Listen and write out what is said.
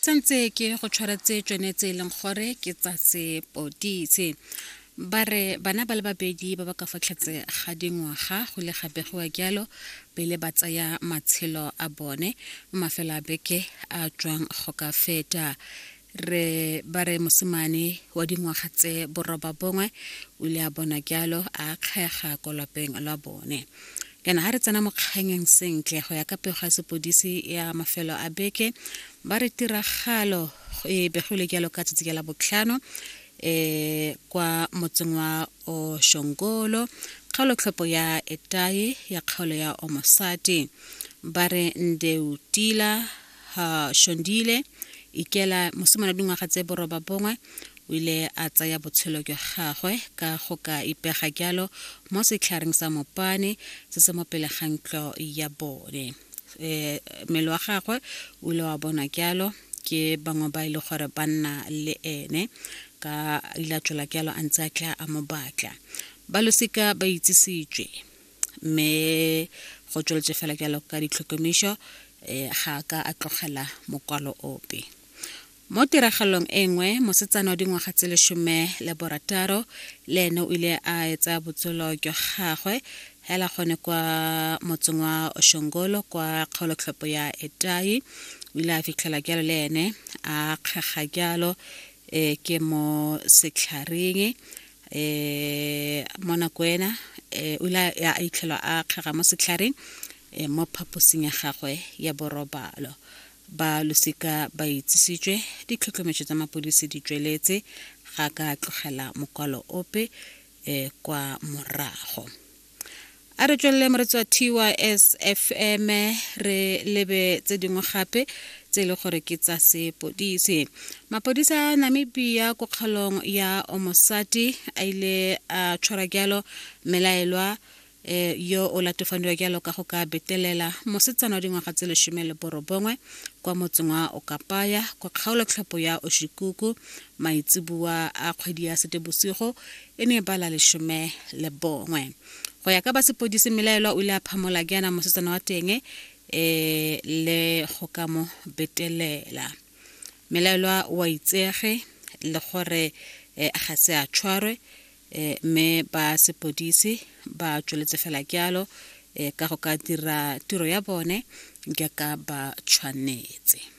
tsentse ke go tshwara tse tsone tse e leng gore ke tsa sepoditse ba re bana ba le babedi ba ba ka fatlhetse ga dingwaga go le gabegiwa jalo pele ba tsaya matshelo a bone mafelo a beke a tswang go ka feta re ba re mosimane wa dingwaga tse boroba bongwe o ile a bona jalo a kgega ko lapeng la bone yana ga re tsena mokganyeng sentle go ya ka pego ya sepodisi ya mafelo a beke ba re tiragalo e begile jalo ka tsatsi la botlhano e kwa motseng wa oshongolo kgaolotlhopo ya etaye ya kgaolo ya omosati ba re ndeutila uh, shondile ikela mosimane dingwaga tse boroba bongwe o ile a tsaya botshelo jwa gagwe ka go ka ipega jalo mo setlhareng sa mopane se se mo pele ga ntlo ya bone um mmele wa gagwe o ile wa bonwa jalo ke bangwe ba e le gore ba nna le ene ka ile a tswela jalo a ntse a tla a mo batla ba losika ba itsisitswe mme go tsweletse fela jalo ka ditlhokomišo um ga ka a tlogela mokwalo ope mo tiragalong e nngwe mosetsana wa dingwaga tse lesome le borataro le ene o ile a etsa botshelo jwa gagwe hela gone kwa motseng wa oshongolo kwa kgaolotlhopo ya etai o ile a fitlhela jalo le ene a kgega jalo um ke mo setlharing eh mo nako ena eh o ile a itlhelwa a kgega mo setlhareng eh, mo phaposing ya gagwe ya borobalo ba losika ba itsisitswe ditlhotlhometso tsa mapodisi di tsweletse ga ka tlogela mokwalo ope eh kwa morago a re tswelele moretsi wa tys fm re lebe tse dingwe gape tse e le gore ke tsa sepodisi mapodisa a namibia ko kgaolong ya omosati a ile a tshwara jalo melaelwa eh, yo o latofadiwa jalo ka go ka betelela mosetsana wa dingwaga tse lesome le borobongwe kwa motseng wa okapaya kwa kgaolotlhopo ya oshikuku maitseboa a kgwedi ya setebosigo e ne ba la lesome le bongwe go ya ka ba sepodisi melaelwa o ile a phamola ke yana mosetsana wa teng um le go ka mo betelela melaelwa wa itsege le gore um ga se a tshwarwe um mme ba sepodisi ba tsweletse fela kyalo um ka go ka dira tiro ya bone jaaka ba tshwanetse